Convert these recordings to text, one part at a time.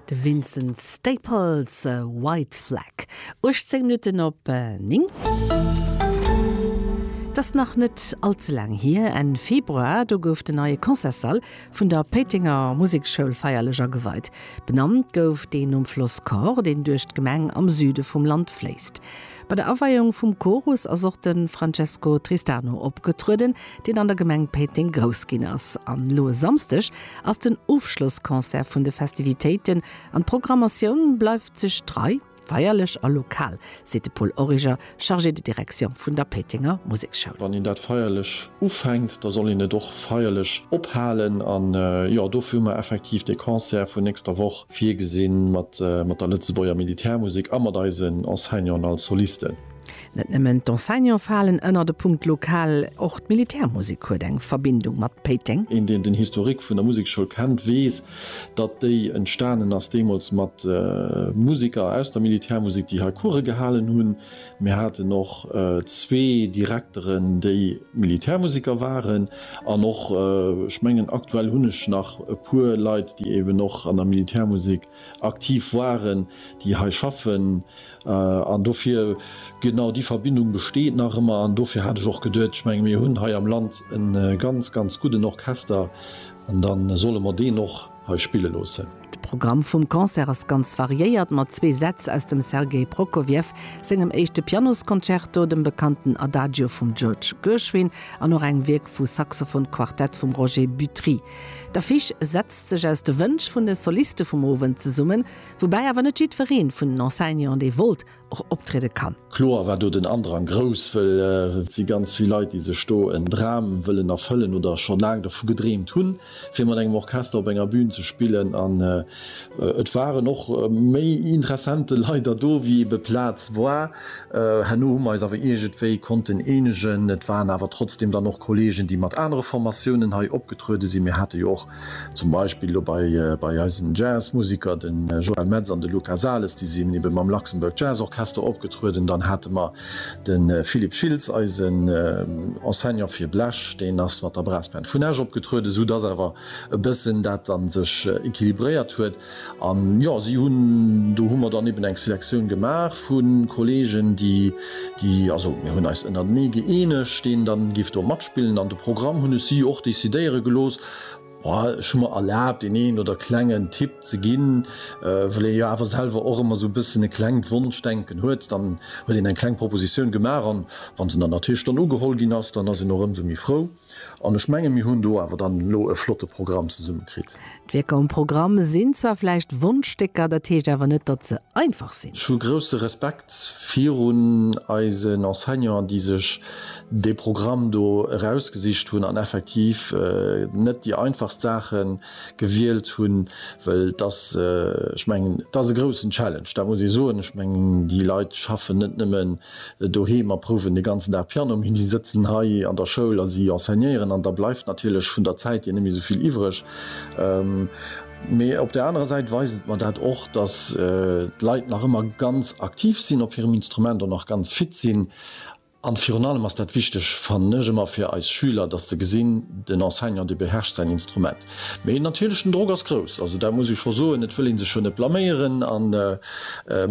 De Vincent Staples, White Flag, 18 Minutten op 9. Et ass nach net all ze laang hier, Enn Februar, do gouf den neie Concertssall vun der Péitenger Museksschoul feierlech ageweit. Benannt gouf deen nom Floss Kor, deen duerch d'Gemeng am Süde vum Land fléisst. Bei der Aweiung vum Chorus ass och de Francesco Tristano opgetrueden, deen an der Gemeng Péiteng grouss ginn ass. An elo e Samsdeg ass den Ofschlossconcert vun de Festivitéiten an d'Programmatioun bleift sech trei, feierlech a lokal, seet de Paul Origer, Chargé de direction vun der Péitenger Museksschoul. Wann een dat feierlech ufänkt, da soll een et och feierlech ophalen. An jo, dofir hu mer effektiv dee Concert vun nächster Woch Virgesinn, mat der Lëtzebuerger Militärmusek a mat eisen Enseignanten als Solisten. Net nëmmen d'Enseignante falen ënnert e Punkt lokal, och d'Militärmusek huet eng Verbindung mat Péiteng. Een, deen den Historique vun der Musekschoul kennt, weess, datt déi entstanen ass deemools mat Musiker aus der Militärmusek, déi hei Course gehalen hunn. Mir haten och zwee Direkteren, déi Militärmusiker waren. An och, ech mengen, aktuell hunn ech nach e puer Leit, déi eeben och an der Militärmusik aktiv waren, déi hei schaffen. An dofir, genau déi Verbindung besteet nach ëmmer. An dofir hat ech och geduet, ech menge mir hunn hei am Land e ganz, ganz gudden Orchester, dann solle mer deen och, hei spille loossen. De Programm vum Concert ass ganz variéiert mat zwee Sätz aus dem Sergei Prokofjew sengem éischte Pianosconcerto, dem bekannten Adagio vum George Gershwin an och engem Wierk vu Saxophonquartett vum Roger Butry. D'Affiche setzt sech aus de Wënsch vun de Soliste vum Owend zesummen, woubäi awer net jiddweree vun den Enseignanten dee wollt. och optriede kann. Kloer war do den Andrang grouss, wëll et si ganz vill Leit, déi sech do en Dram wëllen erfëllen oder scho laang dervu gedreemt hunn, fir mat engem Orchester op enger Bün ze spillen. An et waren och méi interessante Leider do, wéi ebe Plaz war. Herno hu mer eis awer iergendwéi konnten eenegen. Et waren awer trotzdeem dann och Kolleegen, déi mat anere Formatiounen hei opgetruede sinn. Mir hate jo och Zum Beispill elo bei eisen Jazzmusiker, de Joel Metz an de Luca Sales, déi sinn ebe mam Luxembourg Jazz Orchester opgetrueden. Dann hate mer de Philippe Schiltz, eisen Enseignant fir Blech, deen ass mat der Brassband vun Esch opgetrueden, esou dass awer e bëssen dat dann sech equilibréiert huet. An jo, si hunn, do hu mer dann eben eng Selektioun gemaach vu Kolleegen, déi, déi, also mir hunn eis ënnertenee gëeenegt, deen dann géif do matspillen. An de Programm hunn ech si och decidéiere gelooss. Ech hu mer erlaabt, deen een oder klengen Tipp ze ginn, wëll ee jo awer selwer och ëmmer sou e bëssen e klengt Wonschdenken huet. Dann huet een eng kleng Propositioun gemaach, an wa se dann natierlech dann ugeholl ginn ass, dann ass een och ëmsou méi frou. An ech mengen, mir hunn do awer dann elo e flotte Programm zesummekritt. D'Wierker um Programm sinn zwar vläicht Wonschstécker, dat heescht awer net, datt se einfach sinn. Ech hu grousse Respekt virun eisen Enseignanten, déi sech dee Programm do erausgesicht hunn an effektiv net déi einfachst Saache gewielt hunn, well et ass, ech mengen, et ass e groussen Challenge, dat muss ee soen. Ech mengen, déi Leit schaffen net nëmmen. doheem a prouwen de ganzen Dag Piano, mee si sëtzen hei an der Schoul a si enseignéieren an da bleift natierlech vun der Zäit hier net méi esou vill iwwreg. Mee op där anerer Säit weist et mer dat och, dass d'Leit nach ëmmer ganz aktiv sinn op hirem Instrument an nach ganz fit sinn. An virun allem ass dat wichteg, fannen ech ëmmer, fir eis Schüler, dass se gesinn, den Enseignant, dee beherrscht säin Instrument. Mee natierlech den Drock ass grouss, also dat muss ee scho soen. Et wëll ee sech jo net blaméieren an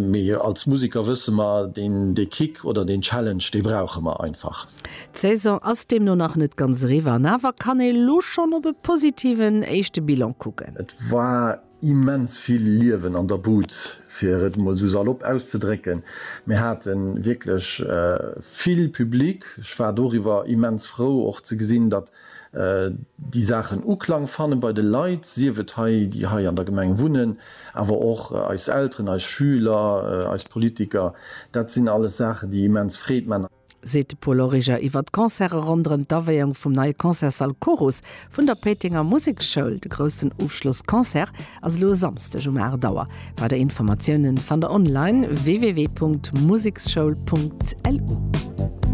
mee als Museker wësse mer, deen dee Kick oder deen Challenge, dee brauche mer einfach. D'Saison ass deemno nach net ganz eriwwer an awer kann ee lo schonn op e positiven éischte Bilan kucken. Et war Immens vill Liewen an der Bud, fir et emol esou salopp auszedrécken. Mir hate wierklech vill Public. Ech war doriwwer immens frou och ze gesinn, datt déi Saachen Uklang fanne bei de Leit, sief et hei, déi hei an der Gemeng wunnen, awer och eis Elteren, eis Schüler, eis Politiker. Dat sinn alles Saachen, déi immens Freed man. seet de Paul Origer iwwer d'Concerte ronderëm d'Aweeung vum neie Concertssall Chorus vun der Péitenger Museksschoul. De groussen Ofschlossconcert ass elo e Samsdeg um 8 Auer. Weider Informatiounen fannt der online, www.museksschoul.lu.